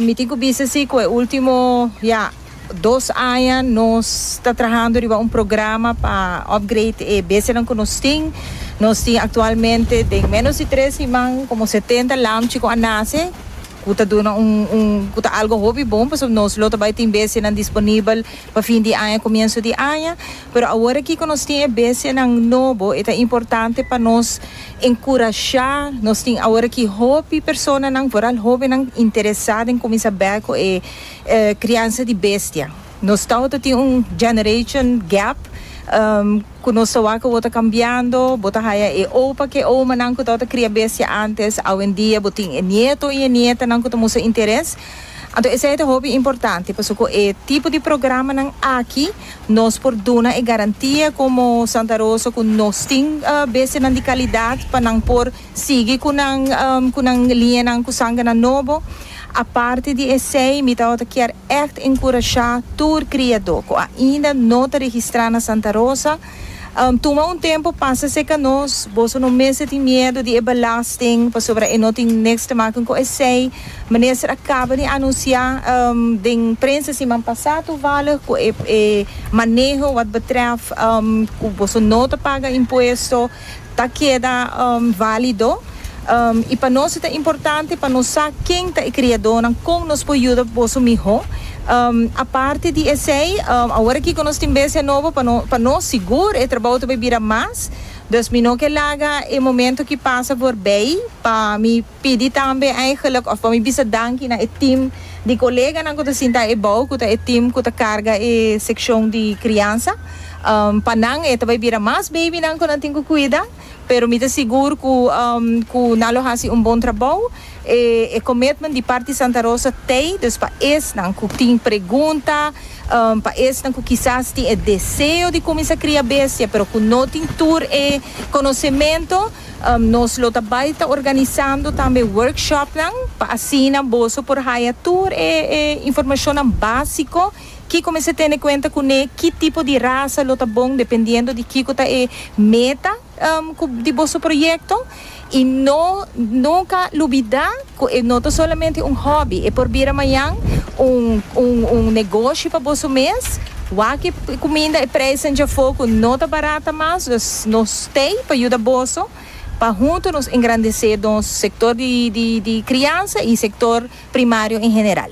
Mi tin cu bisa si cu e ultimo ya dos aña nos ta trahando riba un programa pa upgrade e bestianan cu nos tin. Nos tin actualmente den menos di tres siman como setenta lamchi cu a nace cu ta duna un un cu ta algo hopi bon pasobra nos lo ta bay tin bestianan disponibel pa fin di aña comienso di aña. Pero awor aki ku nos tin e bestianan nobo, e ta importante pa nos enkurashá. Nos tin awor aki hopi personanan, foral hóbennan, interesá den kuminsá bèk ku e kriansa di bestia. Nos tabata tin un generation gap ku nos ta wak awor ta kambiando. Bo ta haya e opa ku e omanan ku tabata kria bestia ántes, awendia bo tin e nieto i e nietanan ku ta mustra interes. Anto esei ta hopi importante pasobra ku e tipo di programanan aki. Nos por duna e garantia komo Santa Rosa ku nos tin bestianan di kalidat pa nan por sigui ku nan ku nan liñanan ku sanganan nobo. Aparte di esei mi tabata kier ègt enkurashá tur kriadó ku ainda no ta registrá na Santa Rosa, Tuma un tempu pasa seca nos. Boso no mester tin miedu di e belasting pasobra e no tin niks te maken cu esey. Minister a caba di anuncia den prensa siman pasa toevallig cu e maneho wat betref cu boso no ta paga impuesto. ta keda válido i pa nos ta importante pa nos sa ken ta e kriadónan kon nos por yuda boso mihó. Aparte di esei awor aki ku nos tin bestia nobo pa no pa nos sigur e trabou ta por bira mas, dus mi no ke laga e momentu aki pasa por bei pa mi. Pidi tambe eigenlijk of pa mi bisa danki na e team di koleganan ku ta sinta ebou ku ta e team ku ta karga e sekshon di kriansa. Pa nan e ta bai bira mas beibinan ku nan tin ku kuida, pero mi ta sigur ku ku nan lo hasi un bon trabou. E e commitment di parti Santa Rosa t'ei, dus pa esnan ku tin pregunta, pa esnan ku kisas tin e deseo di kuminsa kria bestia pero ku no tin tur e konosementu, Nos lo ta bai ta organisando tambe workshopnan pa asina boso por haya tur e informashonnan básiko, kiko mester tene kuenta kuné, ki tipo di rasa lo ta bon dependiendo di kiko ta e meta di boso proyekto i no nunka lubidá. Cu e no ta solamente un hobby, e por bira mañan un un un negoshi pa boso mes. Wak e cuminda, e prijzen dja foco no ta barata mas, dus nos stay pa yuda boso pa hunto nos engrandece nos sector di di di crianza y sector primario en general.